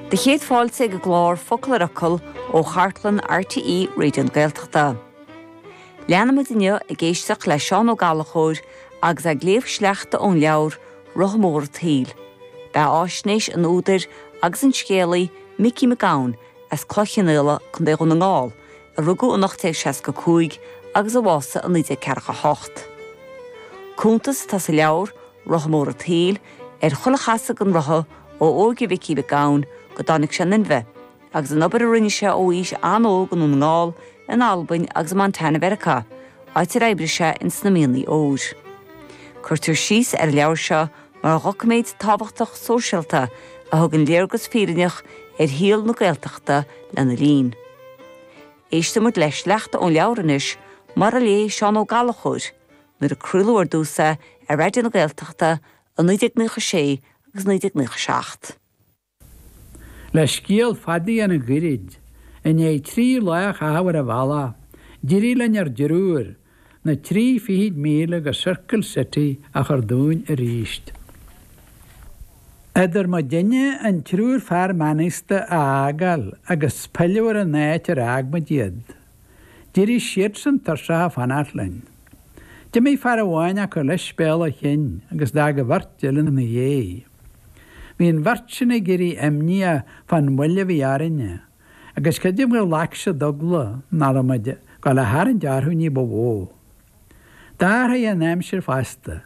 Do chéad fáilte ag an gclár Focal ar Fhocal ó chartlann RTÉ Raidio na Gaeltachta. Leanfaimid inniu ag éisteacht le Seán Ó Gallachóir agus é ag léamh sleachta ón leabhar Rotha Mór an tSaoil. Beathaisnéis an údair agus an scéalaí Micí Mac Gabhann as Cloich Chionnaola, Co. Dhún na nGall, a rugadh in 1865 agus a bhásaigh in 1948. Cuntas atá sa leabhar, Rotha mór a' tsaoil, ar chuile chasadh den rotha, ó óige Mhicí Mhic Gabhann go dtáinig sé in inmhe, agus an obair a rinne sé ó aois an-óg i nDún na nGall, in Albain agus i Montana Mheiriceá, áit ar oibrigh sé in sna mianaigh óir. Cuirtear síos ar an leabhar seo mar dhoiciméad tábhachtach sóisialta a thugann léargas fírinneach ar shaol na Gaeltachta lena linn. Éisteann muid le sleachta ón leabhar anois, mar a léigh Seán Ó Gallachóir, Nuair a craoladh ar dtús é ar Raidió na Gaeltachta i 1996 agus 1997. Le scéal fada a dhéanamh goirid, i ndiaidh trí lá a chaitheamh ar an bhealach, d'éirigh linn ár dtriúr na trí fichid míle go Circle City a chur dúinn arís. Eadar muidinne an triúr fear meánaosta a fhágáil agus pilleadh ar an áit ar fhág muid iad. D'éirigh siadsan tuirseach ag fanacht linn. D'imigh fear amháin acu leis béal a chinn agus d'fhág an bheirt eile ina dhéidh. Bhí an bheirt sin ag éirí imníoch fán mhoill a bhí orainne, agus creidim gur ghlac siad eagla nach raibh muid ag gabháil a tharraingt orthu ní ba mhó. D'athraigh an aimsir fosta,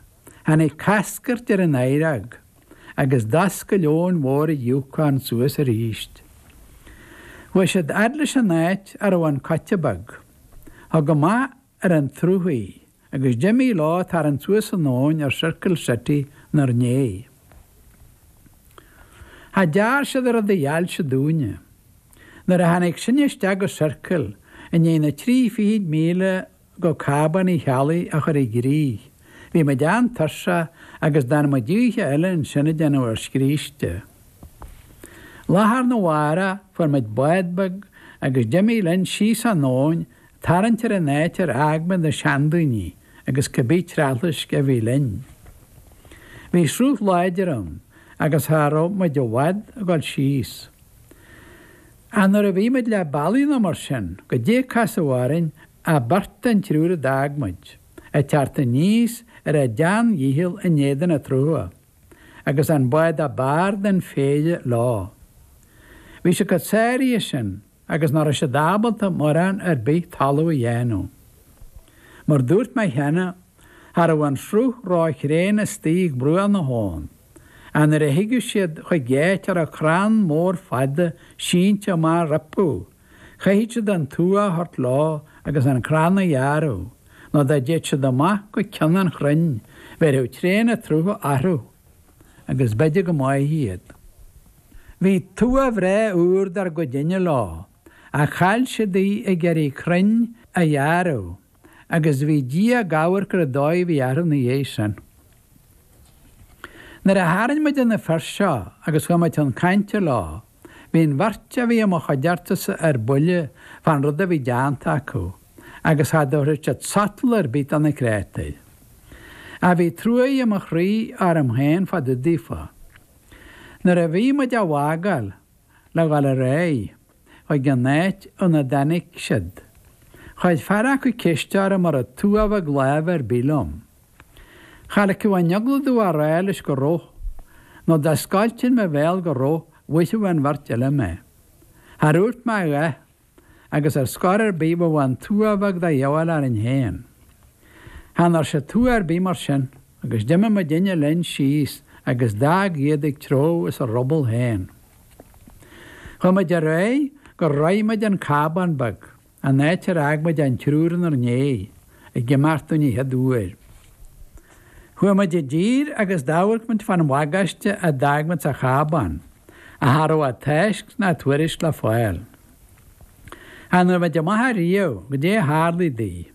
tháinig cascairt ar an oighreog agus d'fhoscail abhainn mhór an Yukon suas aríst. Chuaigh siad fhad leis an áit a raibh an coite beag. Thug amach. ar an tsruth í, agus d'imigh leo ag tarraingt suas an abhainn ar Circle City inár ndéidh. Cha dtearn siad a raibh de dheáilse dúinne. Nuair a tháinig sinne isteach go Circle, i ndiaidh na trí fichid míle go Cábán Uí Cheallaigh a chur i gcrích, bhí muid an-tuirseach agus d'fhan muid oíche eile ansin ag déanamh ár scríste. Lá arna mhárach, fuair muid bád beag agus d'imigh linn síos an abhainn tarraingt ar an áit ar fhág muid na seandaoine agus cibé treallaisc a bhí linn. Bhí sruth láidir ann agus cha raibh muid i bhfad ag dul síos. Ach nuair a bhí muid leath bealaigh nó mar sin, goidé a casadh orainn ach beirt den triúr a d'fhág muid, ag teacht aníos ar a dteanndícheall in éadan an tsrutha, agus an bád ab fhearr den phéire leo. Bhí siad chomh sáraithe sin. agus nach raibh siad ábalta mórán ar bith talamh a dhéanamh. Mar a dúirt mé cheana, cha raibh an sruth róthréan istigh ag bruach na habhann, ach nuair a thigeadh siad chuig áit a raibh crann mór fada sínte amach rompu, chaithfead siad an tua a thabhairt leo agus an crann a ghearradh, nó dá dtéadh siad amach go cionn an chrainn, bhéarfadh tréan an tsrutha orthu. agus b'fhéidir go mbáfaí iad. Bhí tua bhreá úr dár gcuidinne leo, ach chaill siad í ag iarraidh crainn a ghearradh, agus bhí Dia ag amharc ar an dóigh a bhí orthu ina dhiaidh sin. Nuair a tharraing muid ar na fir seo agus chuaigh muid chun cainte leo, Bhí an bheirt a bhí i mo chuideachtasa ar buile fán rud a bhí deánta acu, agus cha dtabharfadh siad sotal ar bith do na créatúir. Ach bhí truaí i mo chroí orm féin fá dtaobh daofa. Nuair a bhí muid á bhfágáil le dhul ar aghaidh chuig an áit óna dtáinig siad, chuir fear acu ceist orm an raibh tua bheag láimhe ar bith liom. Cha ligfeadh an eagla domh a rá leis go raibh, nó dá scoiltinn mo bhéal go raibh bhuailfeadh an bheirt eile mé. Char dhúirt mé a dhath, agus ar scor ar bith bheadh an tua bheag de dhíobháil orainn féin. Chan fhuair sé tua ar bith mar sin, agus d'imigh muidinne linn síos agus d'fhág iad ag treabhadh as a ruball féin. Chuaigh muid ar aghaidh gur shroich muid an cábán beag. An áit ar fhág muid an triúr inár ndiaidh ag imeacht dúinn an chéad uair. Chuaigh muid i dtír agus d'amharc muid fán bhagáiste a d'fhág muid sa chábán, ach cha raibh a tásc ná tuairisc le fáil. Chan fhuair muid amach ariamh goidé a tharlaigh di.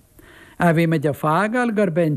Ach bhí muid ag fágáil gurb é an